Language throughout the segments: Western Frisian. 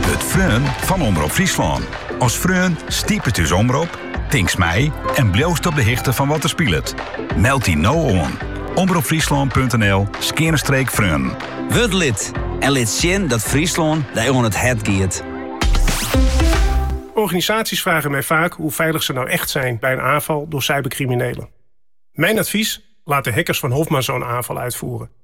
Wurd freon fan Omrop Fryslân. As freon stipest ús omrop, tinkst mei en bliuwst op de hichte fan wat der spilet. Meld dy no oan, omropfryslân.nl skeane streek freonen. Wurd lid en lit sjen dat Fryslân dy oan it hert giet. Organisaties vragen mij vaak hoe veilig ze nou echt zijn bij een aanval door cybercriminelen. Mijn advies, laat de hackers van Hoffmann zo'n aanval uitvoeren.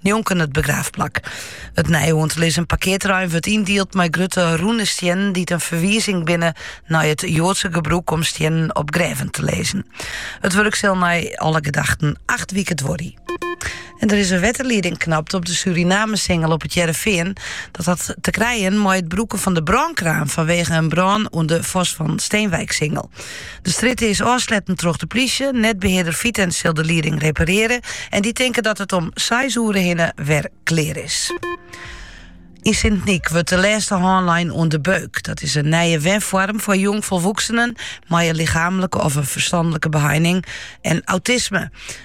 njonken it begraafplak. It nij oan te lizzen parkearterrein wurdt yndield mei grutte rûne stiennen dy't in ferwizing binne nei it Joadse gebrûk om stiennen op grêven te lizzen. It wurk sil nei alle gedachten acht wike duorje. En der is in wetterlieding knapt op de Surinamesingel op It Hearrenfean. Dat hat te krijen mei it brûken fan de brânkraan fanwege in brân oan de Vos van Steenwijksingel. De strjitte is ôfsletten troch de plysje. Netbehearder Vitens sil de lieding reparearje en dy tinke dat it om seis oere hinne wer klear is. Yn Sint-Nyk wurdt de lêste hân lein oan De Beuk. Dat is in nije wenfoarm foar jongfolwoeksenen mei in lichaamlike of in ferstanlike beheining en autisme.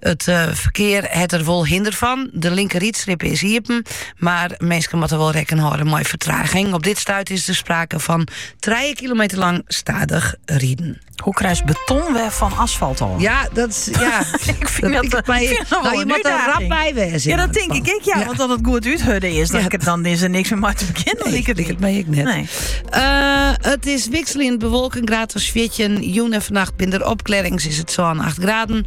It ferkear hat der wol hinder fan. De linkerrydstripe is iepen, mar minsken moatte wol rekken hâlde mei fertraging. Op dit stuit is der sprake fan trije kilometer lang stadich riden. Hoe krij je beton wer fan asfalt ôf? Ja, dat is. Ja, ik fyn dat, dat, by, fyn dat no, je moatte der rap by wêze. Ja, dat tink ik. ik ja, want as it goed úthurde is, dan, dan is der niks mear mei te begjinnen. Nee, ik het, het mee ik net. Nee. Eh, it is wikseljend bewolke, graad as 14. Jûn en fannacht binne der opklearrings is it sa'n 8 graden.